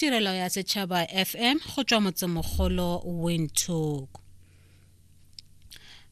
tirelo ya setšhaba fm go tswa motsemogolo windhoek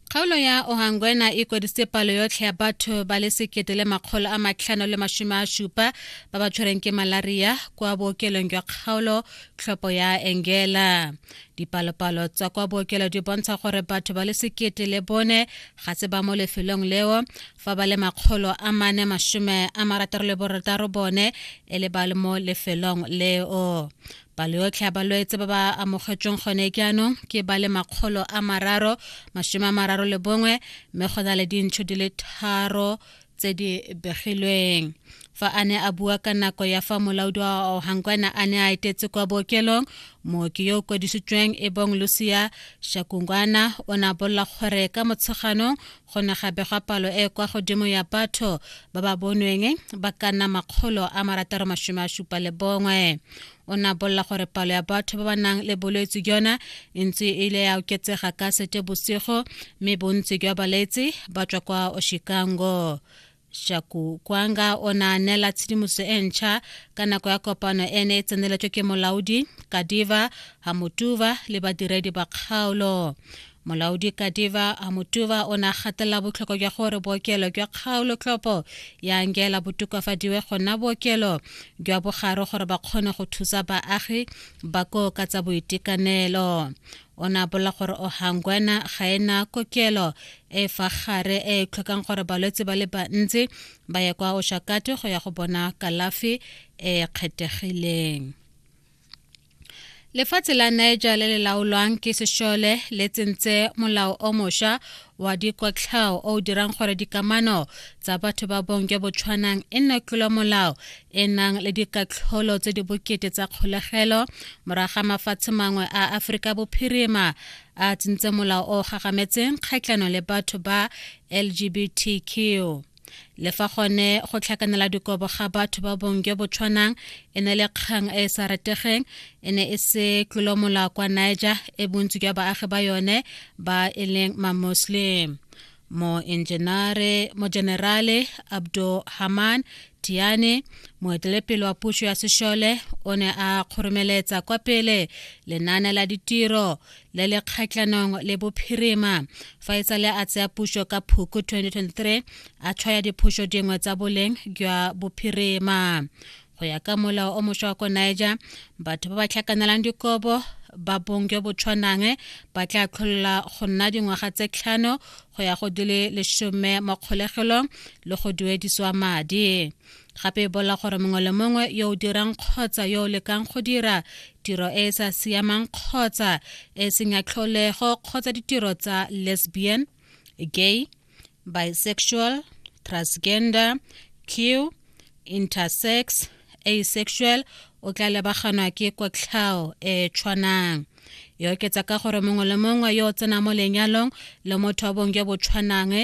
kgaolo ya ohangwena e kwadisitse palo yotlhe ya batho ba le sekete le makgolo a matlhano le masome a supa ba ba tshwereng ke malaria kwa bookelong jwa kgaolo tlhopho ya engela dipalopalo tsa kwa bookelo di bontsha gore batho ba le sekete le bone ga se ba mo lefelong leo fa ba le makgolo a mane masome a marataro le borataro bone e le ba le mo lefelong leo palo yotlhe ya balwetse ba ba amogetsweng gone jaanong ke ba le makgolo a mararo masome a mararo le bongwe mme go na le dintšho di le tharo tse di begilweng fa a ne a bua ka nako ya fa molaodi wa ohangwana a ne a etetse kwa bookelong mooki yo o kwadisitsweng e bong lucia shakungwana o ne a bolela gore ka motsheganong go ne gape gwa palo e kwa godimo ya batho ba ba bonweng ba ka nna makgolo a marataro masome a supa le bongwe o ne a bolela gore palo ya batho ba ba nang le bolwetse jona e ntse e ile ya oketsega ka sete bosigo mme bontsi jwa baletsi ba tswa kwa oshikango shaku kwanga o ne a neela tshedimoso e ntšha ka nako ya kopano e ne e tseneletswe ke molaodi kadiva hamutuva le badiredi ba kgaolo molaodi kadiva hamutuva o ne a gatelela botlhokwa jwa gore bookelo jwa kgaolo tlhopo ya angela botokafadiwe go nna bookelo jwa bogare gore ba kgone go thusa baagi ba koo ka tsa boitekanelo o ne a bolela gore ohangwana ga e na kokelo e fa gare e e tlhokang gore balwetse ba le bantsi ba ye kwa oshakate go ya go bona kalafi e e kgethegileng lefatshe la niger le le laolwang ke sešole le tsentse molao o mošwa wa dikotlhao o o dirang gore dikamano tsa batho ba bong jo bo tshwanang e nne tlolomolao e nang le dikatlholo tse di bokete tsa kgolegelo moraga mafatshe mangwe a aforika bophirima a tsentse molao o gagametseng kgatlhano le batho ba lgbtq le fa gone go tlhakanela dikobo ga batho ba bong jo bo tshwanang e ne le kgang e e sa retegeng e ne e se tlolomola kwa niger e bontsi jwa baagi ba yone ba e leng mamuslim moenjenare mojenerale abdo haman tiane moetelepele wa puso ya sešole o ne a kgoromeletsa kwa pele lenaane la ditiro le le kgatlhanong le bophirima fa e tsale a tsaya puso ka phuku 2023 a tshwaya diphoso dingwe tsa boleng jwa bophirima go ya ka molao o moswa wa ko niger batho ba ba tlhakanelang dikobo ba bong jo bo tshwanang ba tla tlholola go nna dingwaga tse tlhano go ya go di le lesome mo kgolegelong le go duediswa madi gape e bolela gore mongwe le mongwe yo o dirang kgotsa yo o lekang go dira tiro e e sa siamang kgotsa e seng ya tlholego kgotsa ditiro tsa lesbian gay bisexual transgender q intersex asexual o tla lebaganwa ke kotlhao e tshwanang e oketsa ka gore mongwe le mongwe yo o tsenang mo lenyalong le motho wa bong jo bo tshwanang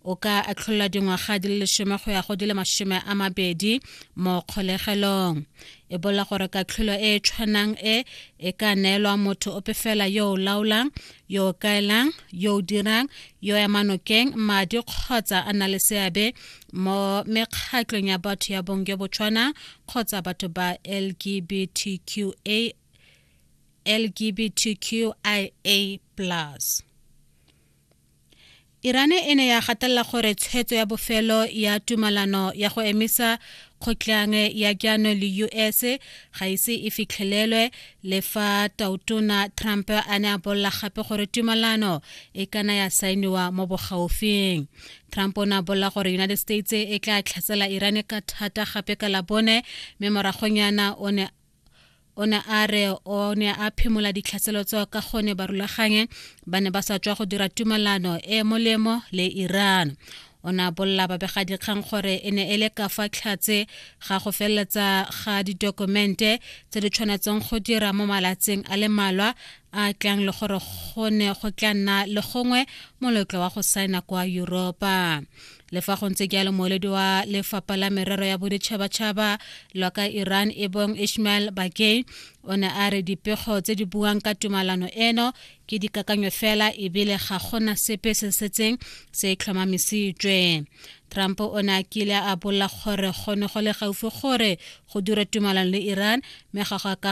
o ka atlholola dingwaga di le lesome go ya go di le masome a mabedi mo kgolegelong e bolela gore katlholo e e tshwanang e e ka neelwa motho ope fela yo o laolang yo o kaelang yo o dirang yo ya manokeng madi kgotsa a na le seabe mo mekgatlong ya batho ya bong jo bo tshwanang kgotsa batho ba lgbtqa LGBTQIA plus. Irane e ne ya gatelela gore tshwetso ya bofelo ya tumalano ya go emisa kgotlang ya jaano le US ga ise e fitlhelelwe le fa tautona Trump a ne a bolela gape gore tumalano e kana ya saeniwa mo bogaufing Trump o ne a bolela gore United States e tla tlhatsela Iran ka thata gape ka labone mme moragonyana o ne o ne a re o ne a phimola ditlhaselo tseo ka gone barulaganye ba ne ba sa tswa go dira tumelano e molemo le iran o ne a bolela babegadikgang gore e ne e le ka fa tlhatse ga go feleletsa ga ditokumente tse di tshwanetseng go dira mo malatsing a le malwa a tlang le gore go ne go tla nna le gongwe molotlo wa go saena kwa europa le fa go ntse jalo moeledi wa lefapha la merero ya boditšhabatšhaba lwa ka iran e bong ishmael bakey o ne a re dipego tse di buang ka tumalano eno ke dikakanyo fela ebile ga gona sepe se setseng se e tlhomamisitswe trump o ne a kile a bolla gore go ne go le gaufi gore go dira tumalano le iran mme ga go ka